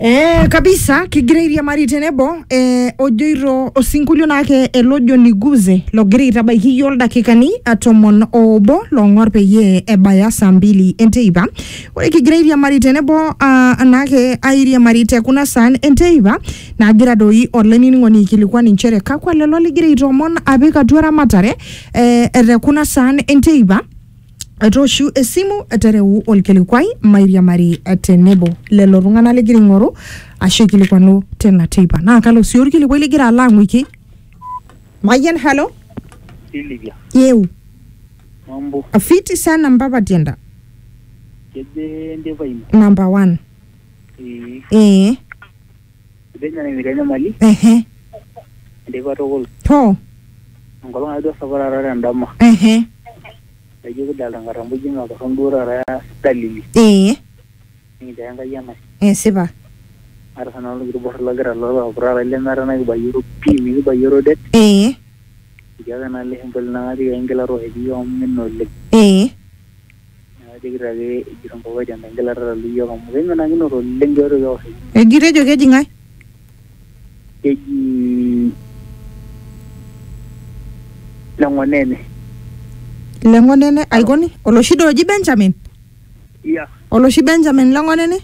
Eh, kabisa kigira airiamari tenebo eh, ojoito osinkolio naake ele ojo niguze logira aitabaiki iyiook ildakikani eh, tomon oobo loong'or peyie ebaya saa mbili enteipa ore kigira airiamari tenebo ah, naake airiamari te kuna saan enteipa nagira doi olainining'oni aikilikuan inchere kakwa lelo ligira aitoomon apik atua eramatare eh, te kuna saan enteipa etooshu esimu etereu olkilikuai mairiamari tenebo lelo tung'anak ligira aing'oru ashu aikilikwanu tina teipa naa kalo sii olkilikuai ligira alo ang'uiki mayian halo Silvia, yeu mambo, fiti sana mpapa tienda keje ndipa ino? namba 1 Eh, ee Etejo ina metii enyamali ehe enteipa tukul hoo enkolong ake duo sapuk taata tendama ehe naijo kidalta nkatambo ijo matorron duo taata dalili ee nikincho ake Enkai enashe esipa aata sinanu olkiti borrei lagira alo alo aputaa lai lemeeta naikibayioro pii mikibayioro det ee etii ake naa ele shemboli nang'arie aingila tooshoki iyiook amu imina oleng ee Eji tejo keji ng'ae? Leng'onene aikoni? Oloshi doi oji Benjamin? Oloshi Benjamin Leng'onene?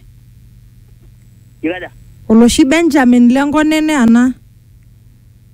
Oloshi Benjamin Leng'onene anaa?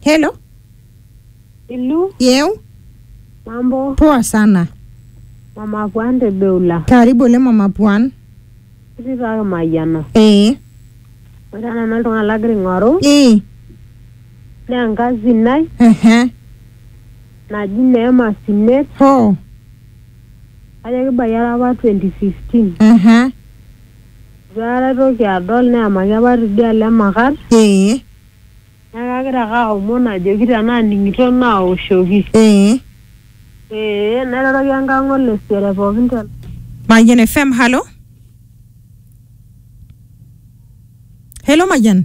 Hello. Ilu, Yeu. mambo, Poa sana. mama kwande beula. Karibu ole mama Puan. Kiti taa kimayiana. Eh. Ore nanu oltung'ani lagira aing'oru Eh. naa enkazi nai Ehe. naji Neema Sinet Ho. kajo kibayie ara apa 2015. Ehe. Itu aikata aitoki adol neemaki apa tidialo emakat Eh. Neeku agira ake aomon ajoki tenaa ning'ito naoshoki. Ee. Ee nairoroki enkang' olesere pookin te. Mayian FM, halo. Hello Mayian.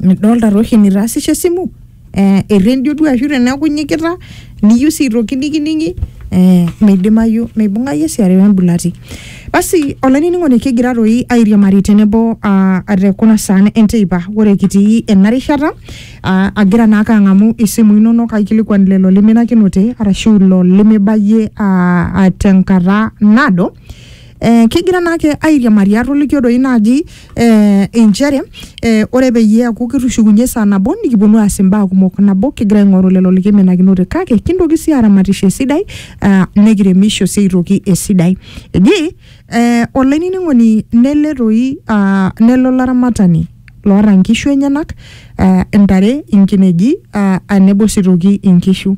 midolta toshi nitaasishe esimu eh, errendio duo ashu teneeku inyikita niyieu sii aitoki nikining'i eh, meidimayu meibung'ayu esiare wembulati basi olainining'oni kigira toi airiamari tenebo ah, te kuna saan enteipa ore kitii ena rishata ah, agira naake ang'amu isimui inonok aikilikuan lelo liminakinote arashu ilo limibayie ah, ah, tenkata naado eh, kigira naake airiamari atoliki doi naaji eh, inchere eh, ore peyie eaku kitushukunye saa nabo nikiponu aas imbaa kumok nabo kigira aing'oru lelo likimenakinote kake kintoki sii aramatisho esidai ah, nikiremisho sii aitoki esidai eji eh, olainining'oni nele toi ah, nelo laramatani loota nkishu enyenak eh, intare inkineji ah, ah, nebo sii toki inkishu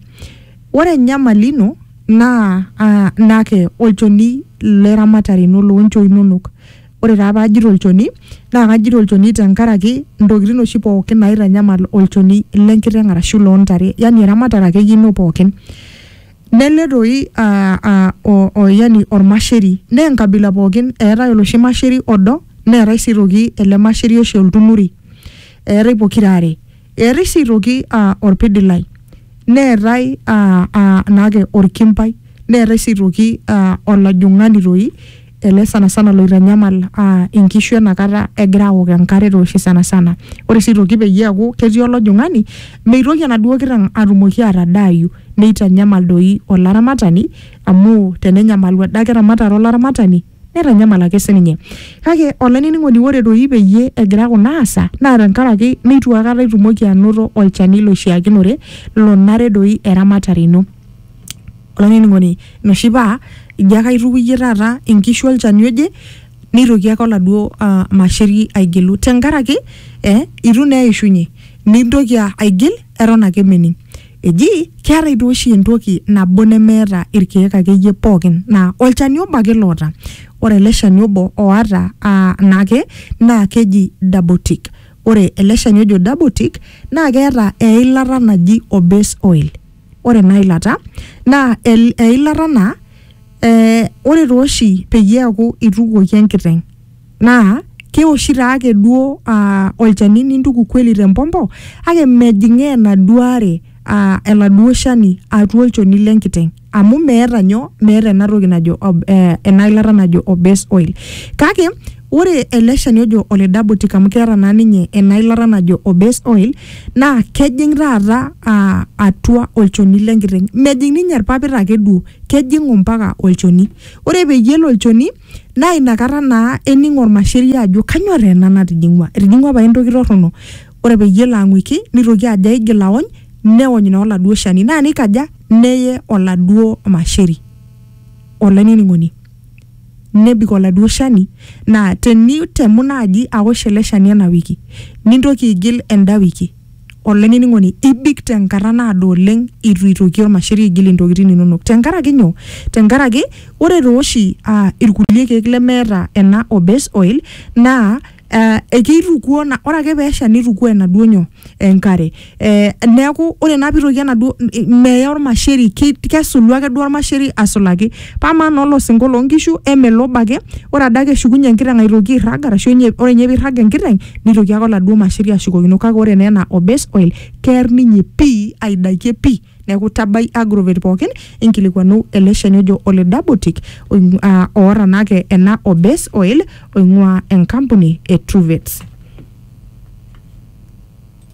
ore enyamali ino naa ah, naa ke olchoni le ramatare ino loonchoo inonok ore taa paajito olchoni naa kajito olchoni tenkaraki intokitin oshi pookin naitanyamal olchoni lenkiteng arashu loontare yani eramatare akeyie ino pookin nele toi ah, ah, o, o, yani ormasheri naa enkabila pookin eetae oloshi masheri odo neetae sii toki ele masheri oshi oltunuri eetae pokira are Erisiitoki aa olpidilai, neetae aa aa naake olkimpai, neetae sii aitoki aa olajung'ani toi ele sanasana loitanyamal aa inkishu ena kata egira aok enkare too oshi sanasana. Ore sii aitoki peyie eeku ketii olajung'ani meitoki enaduo kiteng' atumoki atadaayu neitanyamal doi olaramatani amu tenenyamalu adake eramatare olaramatani Neitanyamal ake sininye. Kake olainining'oni ore doi peyie egira kuna aasa naa tenkaraki neitu akata itumoki anoto olchani loishiakinore lonare doi eramatare ino. Olainining'oni inoshi paa ijo ake aitukuyie taata inkishu olchani oje neitoki ake oladuo uh masheri aigilu tenkaraki eh itu naa eishunye nintoki aigil eton ake mening. Eji keetae duo oshi entoki nabo nemeeta irkeek akeyie pookin naa olchani obo ake loota. Ore ele shani obo oata aa naake naa keji double tick. Ore ele shani ojo double tick naa keeta eilata naji obese oil. Ore ena ilata naa el- eilata naa eh, ore tooshi peyie eaku itukuoki enkiteng'. naa keoshi taa ake duo aa olchani nintuku kweli tempompo kake mejing'aa enaduo are aa eladuo shani atua olchoni lenkiteng amu meeta nyoo meeta ena toki najo ob- eh, ena ilata najo o base oil kake ore ele shani ojo ole dabotic amu keeta naa ninye ena ilata najo o base oil naa kejing taata aa atua olchoni lenkiteng mejing ninye irpapit ake duo kejing ompaka olchoni ore peyie elo olchoni naa inakata naa ening ormasheria ajo kanyoo taa ena natijing'ua etijing'ua pae entoki torrono ore peyie elo ang'uiki nitoki ajo aigil aony neony naa oladuo shani naa nikaja neye oladuo masheri olainining'oni nebik oladuo shani naa tenitemu naaji awosh ele shani ena wiki nintoki aigil enda wiki Olainining'oni, ibik te nkata naado oleng eitu eitoki olmasheri aigil intokitin inono. Te nkaraki nyoo? Te nkaraki ore taa oshi ilkulie keek lemeeta ena o base oil naa ekeitukuo, ore ake pee esha neitukuo enaduo nyoo, enkare. Neaku ore naa pee eitoki enaduo, meya olmasheri, kesulu ake duo olmasheri asulaki. Pamaa naa olosinko loo nkishu eme lobo ake, ore adake eshukunye enkiteng aitoki airrag arashu enye ore ninye peirrag enkiteng neitoki ake oladuo masheri ashukokino kake ore naa ena o base oil kear ninye pii aidakie pii. Neeku tabai agrovet pookin inkilikuanu ele shani ojo ole Dabotic oing aa oata naake ena o base oil oing'uaa enkampuni e Truvets.